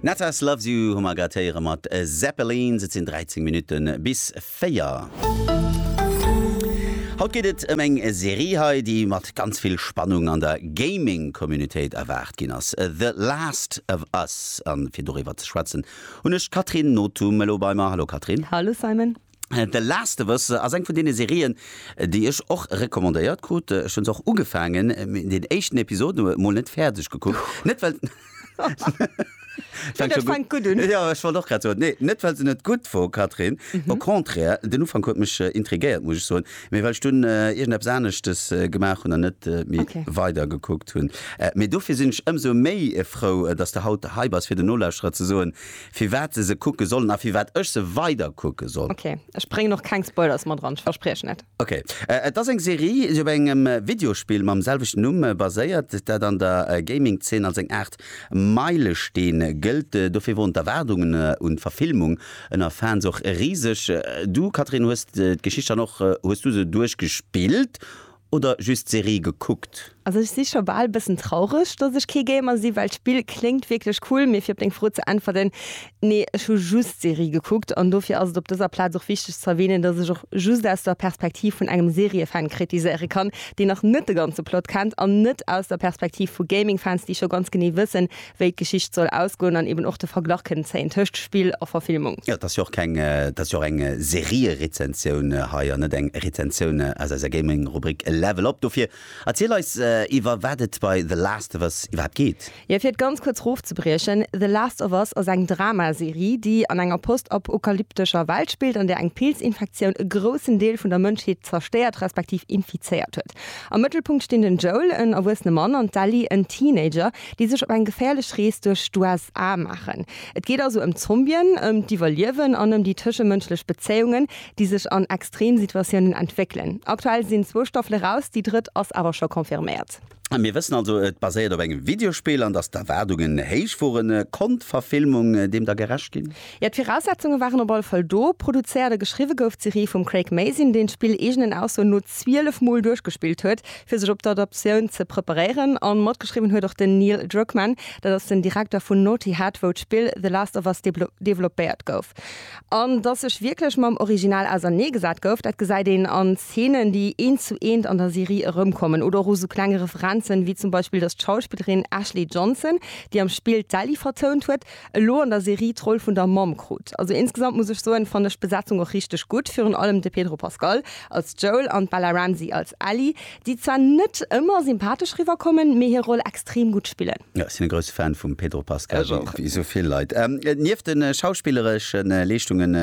Natas Loves You hu mer grad héiere mat Zeppelins. Et sinn 13 Minutte bis 4. Haut geet et ëm eng Serie hei, déi mat ganz vill Spannung an der Gaming-Communitéit erwaart ginn ass, The Last of Us. A fir doriwwer ze schwätzen hunn ech d'Catherine Nothum elo bei mer. Hallo Catherine. Hallo Simon. The Last of Us ass eng vun deene Serien, déi ech och recommandéiert krut. Ech hunn se och ugefaangen, mee deen éischten Episode mol net fäerdeg gekuckt. Net well. Fänkt scho gutt un. Jo, ech wollt och grad soen, nee, net well se net gutt wor, Catherine, au contraire, den Ufank huet mech intriguéiert, muss ech soen, mee well ech dunn iergendeppes aneschtes gemaach hunn an net méi weider gekuckt hunn. Mee dofir sinn ech ëmsou méi frou, dass de haut hei bass, fir den Nolauschterer ze soen, Firwat de se kucke sollen a firwat ech se weider kucke soll. Ok, ech bréngen och keng Spoilers mat eran, ech verspriechen et. Ok, et ass eng Serie, déi op engem Videospill mam selwechten Numm baséiert, dat an der Gaming-Zeen als eng Aart Meilesteen gëllt. Dofir woren d'Erwaardungen un d'Verfilmung ënner Fans och riseg. Du, Catherine, hues d'Geschicht dann och, hues du se duerchgespillt? oder just d'Serie gekuckt? Also ech si scho bal bëssen traureg dass ech kee Gamer si, well d'Spill kléngt wierklech cool. Mee fir op deng Fro ze äntwerten, Nee, ech hu just d'Serie gekuckt. An dofir ass et op dëser Plaz och wichteg ze erwähnen, dass ech och just aus der Perspektiv vun engem Seriefan kritiséiere kann, deen nach net de ganze Plot kennt, an net aus der Perspektiv vu Gamingfans, déi scho ganz genee wëssen, wéi d'Geschicht soll ausgoen an eben och de Verglach kënnen zéien tëscht Spill a Verfilmung. Jo, et ass jo och keng, et ass jo och eng Serierezensioun hei an net eng Rezensioun aus eiser Gaming-Rubrik Level Up. Dofir erziel eis, iwwer wat et bei The Last of Us iwwerhaapt geet. Jo, fir et ganz kuerz erofzebriechen, The Last of Us ass eng Drama-Serie, déi an enger postapokalyptescher Welt spillt, an där eng Pilzinfektioun e groussen Deel vun der Mënschheet zerstéiert respektiv infizéiert huet. Am Mëttelpunkt stinn den Joel, en erwuessene Mann, an d'Ellie, en Teenager, déi sech op eng geféierlech Rees duerch d'USA maachen. Et geet also ëm Zombien, ëm d'Iwwerliewen an ëm déi tëschemënschlech Bezéiungen, déi sech an Extremsituatiounen entwéckelen. Aktuell sinn zwou Staffele raus, déi drëtt ass awer scho confirméiert. Mir wëssen also, et baséiert op engem Videospill an dass d'Erwaardungen héich woren. Konnt d'Verfilmung deem da gerecht ginn? Jo, d'Viraussetzunge waren op alle Fall do. Produzéiert a geschriwwe gouf d'Serie vum Craig Mazin, deen d'Spill eegenen Aussoen no 12 Mol duerchgespillt huet, fir sech op d'Adaptioun ze preparéieren. A matgeschriwwen huet och den Neil Druckmann, dat ass den Direkter vun Naughty Head, wou d'Spill The Last of Us developpéiert gouf. An datt sech wierklech mam Original ausernee gesat gouf, dat gesäit een an Zeenen, déi eent zu eent an der Serie erëmkommen, oder och u sou klenge Referenzen, wéi zum Beispill, datt d'Schauspillerin Ashley Johnson, déi am Spill d'Ellie vertount huet, elo an der Serie d'Roll vun der Mamm krut. Also insgesamt muss ech soen, fannen ech d'Besetzung och richteg gutt, virun allem de Pedro Pascal als Joel an d'Bella Ramsey als Ellie, déi zwar net ëmmer sympathesch riwwer kommen, mee hir Roll extrem gutt spillen. Jo, ech sinn e grousse Fan vum Pedro Pascal, wéi esou vill Leit. Nieft de schauspillereschen Leeschtungen,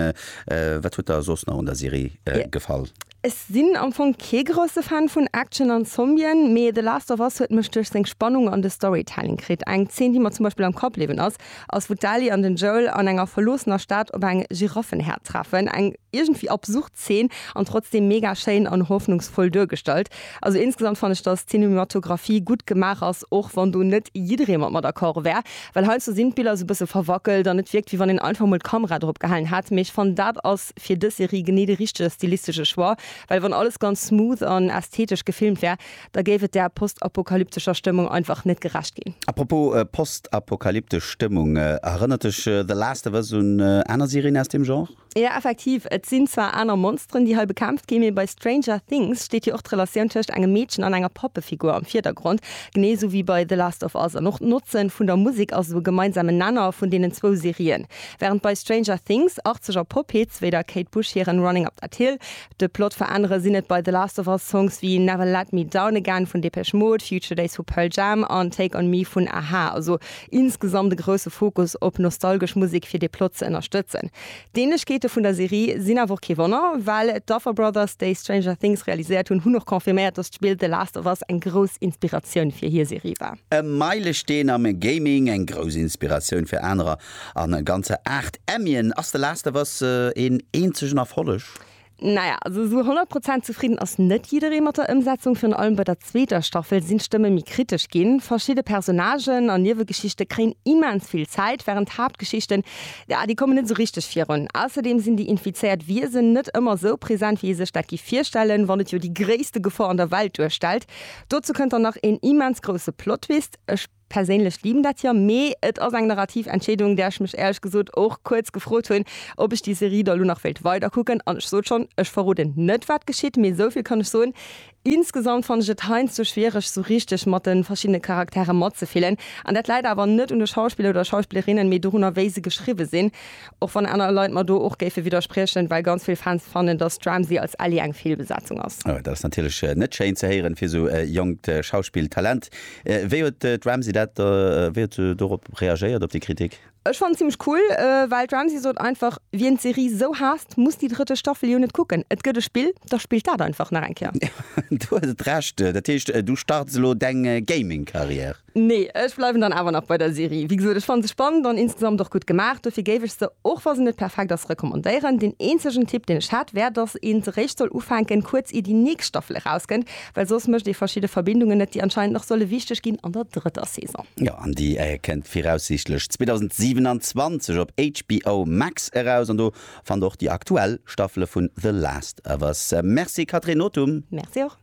wat huet der soss nach un der Serie gefall? Ech sinn am Fong kee grousse Fan vun Action an Zombien, mee The Last of Us huet mech duerch seng Spannung an de Storytelling kritt. Eng Zeen, déi mer zum Beispill am Kapp bliwwen ass, ass wou d'Ellie an den Joel an enger verloossener Stad op eng Giraffenherd treffen. Eng iergendwéi absurd Zeen an trotzdeem mega schéin an hoffnungsvoll duergestallt. Also insgesamt fann ech, dass d'Cinematographie gutt gemaach ass, och wann do net jidderee mat mer d'accord wär, well heiansdo sinn d'Biller sou bësse verwackelt an et wierkt wéi wann een einfach mol d'Kamera drop gehalen hätt, mee ech fannen dat ass. ass fir dës Serie genee de richtege stilistesche Choix, well wann alles ganz smooth an ästhetesch gefilmt wär, da géif et der postapokalyptescher Stëmmung einfach net gerecht ginn. A propos postapokalyptesch Stëmmung, erënnert dech The Last of Us un aner Serien aus deem Genre? Jo, effektiv. Et sinn zwar aner Monsteren, déi hei bekämpft ginn, mee bei Stranger Things steet jo och d'Relatioun tëscht engem Meedchen an enger Pappefigur am Virdergrond, genee esou wéi bei The Last of Us. An och d'Notze vun der Musek ass esou e gemeinsamen Nenner vun deenen zwou Serien. Während bei Stranger Things arzeg a Pop Hits wéi der Kate Bush hiren Running Up That Hill de Plot veränneren, sinn et bei The Last of Us Songs wéi Never Let Me Down Again vun Depeche Mode, Future Days vu Pearl Jam an Take On Me vun a-ha. Also insgesamt e grousse Fokus op nostalgesch Musek fir de Plot ze ënnerstëtzen. D'Ähnlechkeete vun der Serie sinn awer och kee Wonner, well d'Duffer Brothers, déi Stranger Things realiséiert hunn, hunn och confirméiert, dass d'Spill The Last of Us eng grouss Inspiratioun fir hir Serie war. E Meilesteen am Gaming, eng grouss Inspiratioun fir anerer an e ganzer 8 Emmien. Ass The Last of Us een eenzegen Erfolleg? Naja, also esou 100 Prozent zefridden ass net jidderee mat der Ëmsetzung. Virun allem bei der zweeter Staffel sinn d'Stëmme méi kritesch ginn. Verschidde Personnagen an Niewegeschichte kréien immens vill Zäit, wärend d'Haaptgeschichten, ja, déi kommen net esou richteg virun. Ausserdeem sinn déi infizéiert Wiesen net ëmmer esou present, wéi ee sech dat géif virstellen, wann et jo déi gréisste Gefor an der Welt duerstellt. Dozou kënnt dann nach een immens grousse Plot-Twist. Ech perséinlech liben dat jo, mee et ass eng narrativ Entscheedung, där ech mech éierlech gesot och kuerz gefrot hunn, ob ech déi Serie da lo nach wéilt weider kucken. An ech sot schonn, ech verroden net wat geschitt, mee esou vill kann ech soen, insgesamt fannen ech et heiansdo schwiereg esou richteg mat de verschiddene Charaktere matzefillen. An dat läit awer net un de Schauspiller oder Schauspillerinnen, mee dorunner wéi se geschriwwe sinn. Och wann aner Leit mer do och géife widderspriechen, well ganz vill Fans fannen, dass d'Ramsey als Ellie eng Feelbesetzung ass. Oh, dat ass natierlech net schéin ze héieren fir esou e jonkt Schauspilltalent. Wéi huet d'Ramsey dat, wéi huet se dorop reagéiert, op déi Kritik? Ech fannen zimmlech cool, well d'Ramsey sot einfach, Wien d'Serie esou haasst, muss déi drëtte Staffel jo net kucken. Et gëtt e Spill, da spillt dat einfach nach eng Kéier. Do hues et Recht. Dat heescht, du starts elo deng Gaming-Karriär? Nee, ech bleiwen dann awer nach bei der Serie. Wéi gesot, ech fannen se spannend an insgesamt och gutt gemaach. Dofir géif ech se, och wa se net perfekt ass, recommandéieren. Deen eenzegen Tipp, deen ech hätt, wär, dass een se réischt soll ufänken, kuerz ier déi nächst Staffel erauskënnt, well soss mécht ee verschidde Verbindungen net, déi anscheinend nach solle wichteg ginn an der drëtter Saison. Jo, an déi kënnt viraussiichtlech 2027 op HBO Max eraus an do fannt der och déi aktuell Staffele vun The Last of Us. Merci Catherine Nothum. Merci och.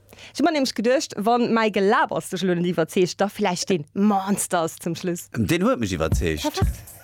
Ech hu mer nämlech geduecht, wann mäi Gelabers dech elo net iwwerzeegt, da vläicht dee Monsters zum Schluss. Deen huet mech iwwerzeegt. Perfekt.